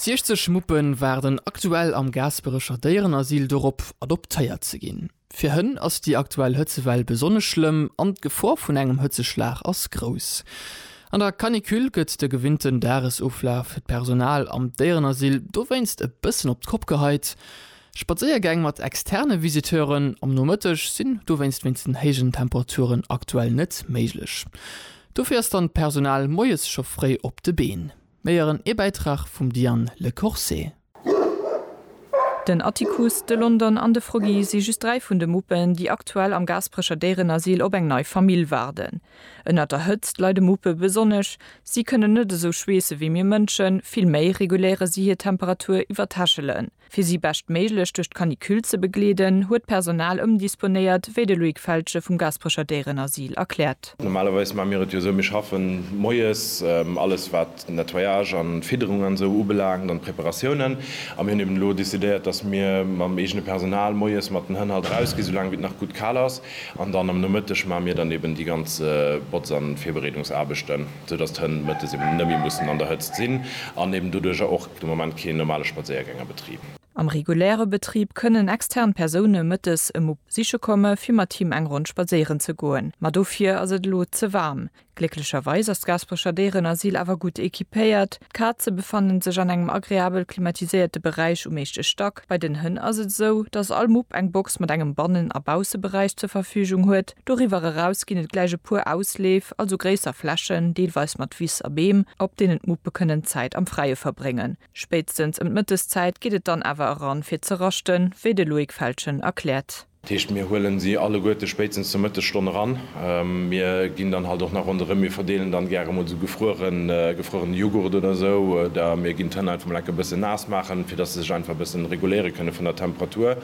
60 Muppen waarden aktuell am Gaasperecher Déierenasyl dorop, adoptéiert ze ginn. Fir Hënn ass déi aktuell Hëtzewell besonnesch schlëmm an d'Gefor vun engem Hëtzeschlag ass grouss. An der Canicule gëtt de gewinnten Dagesoflaf fir d'Personal am Déierenasyl dowéinst e bëssen op d'Kopp geheit. Spadséiergäng mat externe Visiteuren am Nomëtteg sinn dowéinst wéinst den héijen Temperaturen aktuell net méiglech. Dofir ass dann d'Personal moies scho fréi op de Been. Méi eren ee Bäitrag vum Diane Le Corset. Den Atticus, de London an de Froggy si just dräi vun de Muppen, déi aktuell am Gaasperecher Déierenasyl op eng nei Famill waarden. Ënnert der Hëtzt leide Muppe besonnesch. Si kënnen net esou schweesse wéi mir Mënschen, vill méi reguléiere si hir Temperatur iwwer d'Hechelen. Fir si beschtméiglech duerch d'Canicule ze begleeden, huet d'Personal ëmdisponéiert, wéi de Loïc Feltgen vum Gasperecher Déierenasyl erkläert. Normalerweis maache mir et jo esou, mir schaffen moies alles, wat Nettoyage an Fidderung an esou ubelaangt an d'Preparatiounen. A mir hunn eben elo decidéiert, dass mir mam eegene Personal moies mat den Hënn halt erausginn, soulaang wéi et nach gutt kal ass. An dann am Nomëtteg maache mir dann eben déi ganz Botz an Virbereedungsaarbechten, soudass d'Hënn mëttes eben net méi mussen an der Hëtzt sinn an eben doduerjer och. De Moment keen normale Spadséiergäng a Betrib. Am reguläre Betrib kënnen extern Persoune mëttes e Mupp besiche komme fir mat him eng Ronn spadséieren ze goen, ma dofir ass et elo ze waarm. Glécklecherweis ass d'Gaasperecher Déierenasyl awer gutt equipéiert. D'Kaze befannen sech an engem agreabel klimatiséierte Beräich um éischte Stack. Bei den Hënn ass et esou, datt all Mupp eng Box mat engem Bannen a Bausseberäich zur Verfügung huet. Doriwwer eraus ginn et gläich e puer Ausleef, also gréisser Flächen, deelweis mat Wiss a Beem, op deenen d'Muppe kënnen Zäit am Fräie verbréngen. Spéitstens ëm d'Mëtteszäit geet et dann awer eran, fir ze raschten, wéi de Loïc Feltgen erkläert. Dat heescht, mir huelen si alleguerte spéitstens zur Mëttesstonn eran. Mir ginn dann halt och nach ronderëm, mir verdeelen dann gäre mol esou gefruerene Jughurt oder esou, oder mir ginn d'Hënn einfach mol enk e bëssen naass maachen, fir dass se sech einfach e bëssen reguléiere kënnen vun der Temperatur.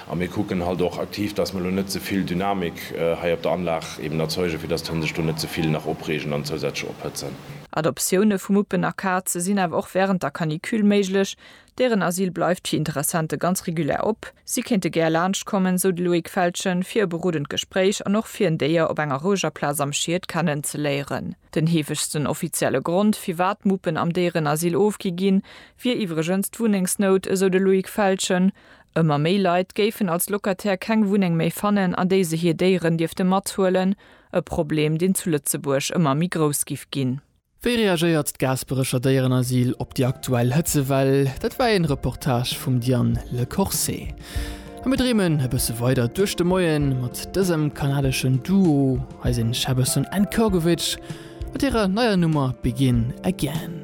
A mir kucken halt och aktiv, dass mer elo net ze vill Dynamik hei op der Anlag eben erzeugen, fir dass d'Hënn sech do net ze vill nach opreegen an zousätzlech ophëtzen. Adoptioune vu Muppen a Kaze sinn awer och wärend der Canicule méiglech. Dären Asyl bleift fir Interessente ganz regulär op. Si kéinte gär laanscht kommen, sou de Loïc Feltgen, fir e berodend Gespréich an och fir en Déier op enger roueger Plaz am Schied kennenzeléieren. Den heefegsten offizielle Grond, firwat Muppen am Déierenasyl ofgi ginn, wier iwwregens d'Wunnengsnout, esou de Loïc Feltgen. Ëmmer méi Leit géifen als Locataire keng Wunneng méi fannen, an déi se hir Déieren dierfte mathuelen, e Problem, deen zu Lëtzebuerg ëmmer méi grouss giff ginn. Wéi reagéiert d'Gaasperecher Déierenasyl op déi aktuell Hëtzewell? Dat war een Reportage vum Diane Le Corse. A mir dreemen e bësse weider duerch de Moien mat dësem kanadeschen Duo, hei sinn Shabason and Kurgovich mat hirer neier Nummer Begin Again.